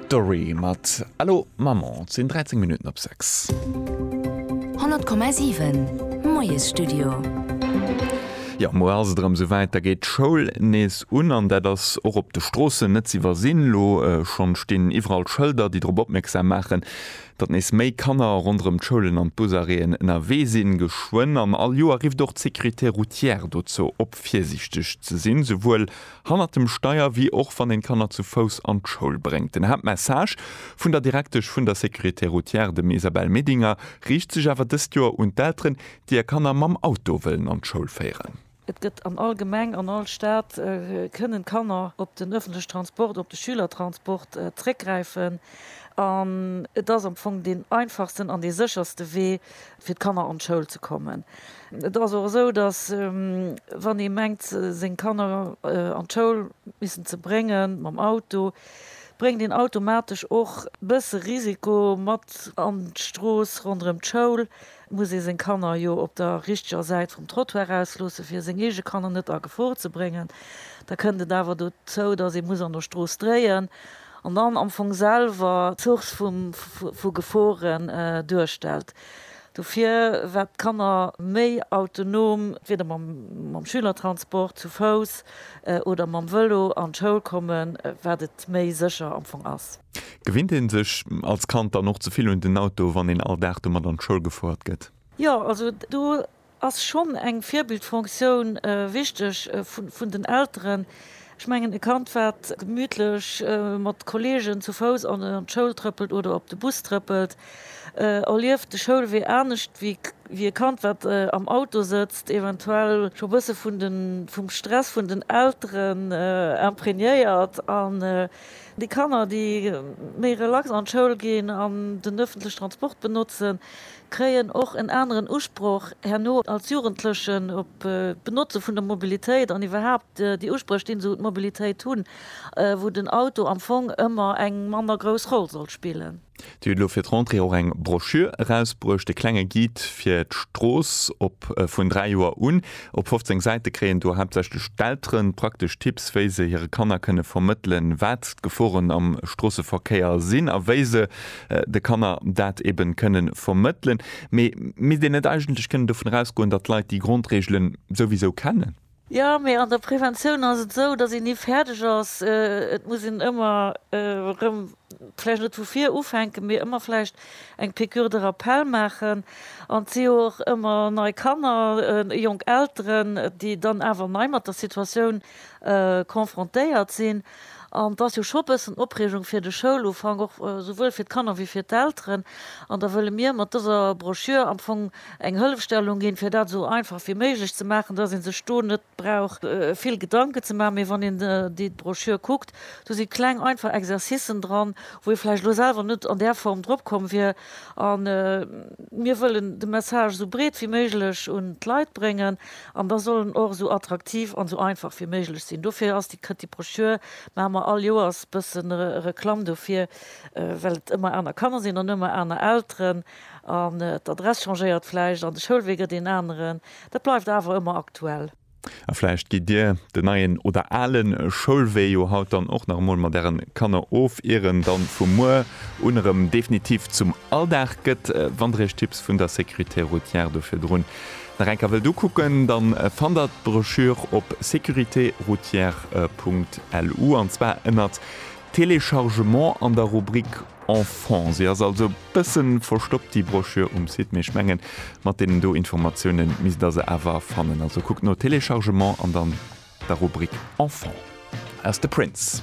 D'Dorry mat Allo Maman. Et sinn 13 Minutten op 6. 100,7 Moiesstudio. Jo, muer ass et erëm sou wäit, da geet d'Schoul nees un an dat ass och op de Stroossen net ze iwwersinn. Elo schonn stinn iwwerall Schëlder, déi drop opmierksam maachen, datt nees méi Kanner ronderëm d'Schoulen an d'Busarrêten ënnerwee sinn. Geschwënn an all Joer rifft och d'Sécurité routière dozou op, virsiichteg ze sinn, souwuel Hannert dem Steier, wéi och wann een d'Kanner zu Fouss an d'Schoul bréngt. Den Haaptmessage vun der Direktesch vun der Sécurité Routière, dem Isabelle Medinger, riicht sech awer dëst Joer un d'Elteren, déi är Kanner mam Auto wëllen an d'Schoul féieren. Et gëtt an all Gemeng, an all Stad kënnen d'Kanner op den ëffentlechen Transport, op de Schülertransport zréckgräifen. An et ass am Fong deen einfachsten an dee sécherste Wee, fir d'Kanner an d'Schoul ze kommen. Et ass och esou, datt wann ee mengt seng Kanner an d'Schoul missen ze brénge mam Auto, bréngt een automatesch och e bësse Risiko mat an d'Strooss ronderëm d'Schoul, muss ee seng Kanner jo op der richteger Säit vum Trottoir ausloosse fir seng eege Kanner net a Gefor ze bréngen. Da kënnt et awer dozou, datt ee muss an der Strooss dréien. An dann am Fong selwer d'Source vum, vu Geforen duerstellt. Dofir, wat d'Kanner méi autonom, entweder mam Schülertransport, zu Fouss oder mam Vëlo an d'Schoul kommen, wat et méi sécher am Fong ass. Gewinnt ee sech als Kand dann och ze vill un den Auto, wann een all Dag domat an d'Schoul gefouert gëtt? Jo, also do ass schonn eng Virbildfonctioun wichteg vun den Elteren. Ech mengen, e Kand, wat gemütlech mat Kolleegen zu Fouss an d'Schoul trëppelt oder op de Bus trëppelt, erlieft de Schoulwee anescht wéi e Kand, wat am Auto sëtzt, eventuell scho e bësse vum Stress vun den Elteren imprégnéiert. An déi Kanner, déi méi relax an d'Schoul ginn an den öffentliche Transport benotzen, kréien och en aneren Usproch herno als Jugendlechen op d'Benotze vun der Mobilitéit an iwwerhaapt déi Uspréch, déi se un d'Mobilitéit hunn, wou den Auto am Fong ëmmer eng manner grouss Roll soll spillen. Dir hutt elo fir d'Rentrée och eng Broschür erausbruecht, e klenge Guide fir d'Strooss op vun 3 Joer un. Op 15 Säite kréien do haaptsächlech d'Eltere praktesch Tipps, wéi se hire Kanner kënne vermëttelen, wat d'Geforen am Stroosseverkéier sinn a wéi se de Kanner dat eben kënnen vermëttelen, mee misst een net eigentlech kënnen dovun erausgoen, datt d'Leit déi Grondregelen souwisou kennen? Jo, mee an der Preventioun ass et esou, datt een ni fäerdeg ass. Et muss een ëmmer erëm, vläicht net vu vir ufänken, mee ëmmer vläicht eng Piqûre de rappel maachen. An et si jo och ëmmer nei Kanner, jonk Elteren, déi dann awer nei mat der Situatioun confrontéiert sinn. An et ass jo scho e bëssen Opreegung fir de Schoulufank, och souwuel fir d'Kanner wéi fir d'Elteren. An da wëlle mir mat dëser Broschür am Fong eng Hëllefstellung ginn, fir dat esou einfach wéi méiglech ze maachen, dass ee sech do net brauch vill Gedanken ze maachen. Mee wann een déi Broschür kuckt, do si kleng, einfach Exercicen dran, wou ee vläicht elo selwer net an där Form drop komm wier. A mir wëllen de Message esou breet wéi méiglech un d'Leit bréngen. An da soll en och esou attraktiv an esou einfach wéi méiglech sinn. Dofir ass déi kënnt déi Brochure, maache mer all Joers bëssen Reklamm dofir, well et ëmmer aner Kanner sinn an ëmmer aner Elteren an d'Adress changéiert vläicht an de Schoulwee gëtt een aneren. Dat bleift awer ëmmer aktuell. A vläicht gitt Dir den neien oder ale Schoulwee jo haut dann och nach emol mat Ären Kanner of, ier en dann vu muer un erëm definitiv zum Alldag gëtt. Wandereg Tipps vun der Sécurité routière do virdrun. Nach eng Kéier wëllt ukucken, da fannt der d'Broschüre op securitéroutière.lu, an zwar ënnert Téléchargement an der Rubrik Enfants. Si ass also e bësse verstoppt, déi Broschüre, um Site, mee ech mengen, mat deenen do Informatiounen misst der se awer fannen. Also kuckt no Téléchargement an dann der Rubrik Enfants. Aus de Prince.